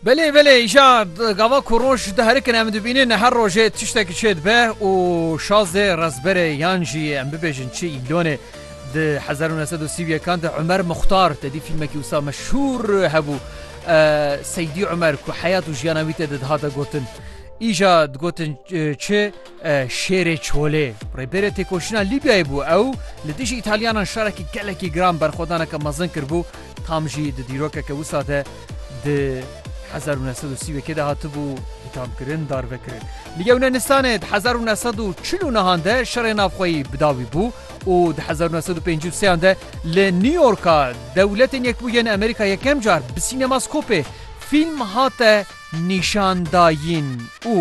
Belê belê îja gava ku roj diherikin em dibînin her rojê tiştekî çê dibe û şazê rezberê yan jî em bibêjin çi îlonê di hezar û nesed û sî û yekan de Umer Muxtar tedî fîlmekî wisa meşhûr hebû Seydî Umer ku heyat û jiyana wî tê de dihate gotin. Îja digotin çi Şêrê Çolê, rêberê têkoşîna Lîbyayê bû. Ew li dijî Îtalyanan şarekî gelekî giran berxwedaneke mezin kiribû, tam jî di dîrokeke wisa de di hezar û neh sed û sî wekê de hatibû îthamkirin, darvekirin. Li Yewneenistanê di hezar û neh sed û çil û nehan de şerê navxweyî bi dawî bû û di hezar û neh sed û pêncî û sêyan de li New Yorka Dewletên Yekbûyî yên Amerîka yekem car bi sînemaskopê fîlm hate nîşan dayîn û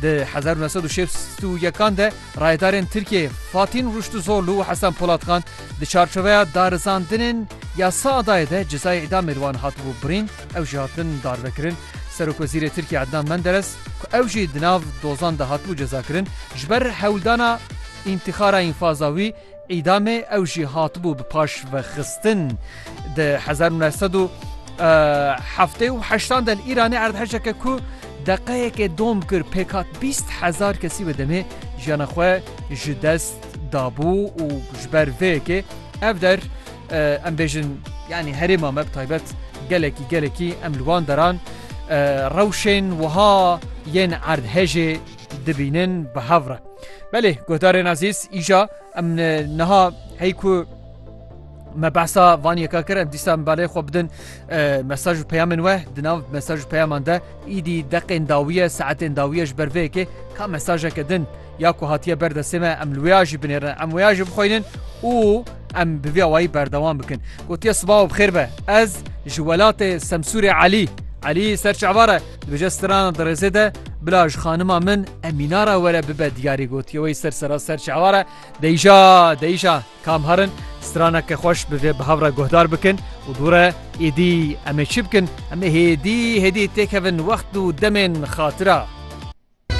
di hezar û neh sed û şêst û yekan de rayedarên Tirkiyeyê Fatîn Rûştuzorlu û Hesen Polatxan di çarçoveya darizandinên ya Saadayê de cezayê îdamê li wan hatibû birîn, ew jî hatin darvekirin. Serokwezîrê Tirkiyê Ednan Menderes ku ew jî di nav dozan de hatibû cezakirin, ji ber hewldana întîxara înfaza wî, Îdamê ew jî hatibû bi paşvexistin. Di hezar û neh sed û heftê û heştan de li Îranê erdhejeke ku deqeyekê dom kir pêk hat bîst hezar kesî bi demê jiyana xwe ji dest dabû û ji ber vê yekê ev der em bêjin yanî herêma me bi taybet gelekî gelekî em li wan deran rewşên wiha yên erdhejê dibînin bi hev re. Belê guhdarên ezîz îja em niha hey ku me behsa van yeka kir em dîsa em balê xwe bidin mesaj û peyamên we di nav mesaj û peyaman de îdî deqên dawiye saetên dawiye ji ber vê yekê ka mesajeke din ya ku hatiye ber destê me em li wêya jî binêrin em wêya jî bixwînin û Em bi vî awayî berdewam bikin. Gotiye sibav bi xêr be. Ez ji welatê Semsûrê Elî. Elî ser çavar e. Dibêje strana dirêzê de bila ji xanima min Emîna re were bibe diyarî gotiye wey ser sera ser çavar e. Deyja deyja kam herin straneke xweş bi vê bihav re guhdar bikin û dûre êdî em ê çi bikin? Em ê hêdî hêdî têkevin wext û demên xatira.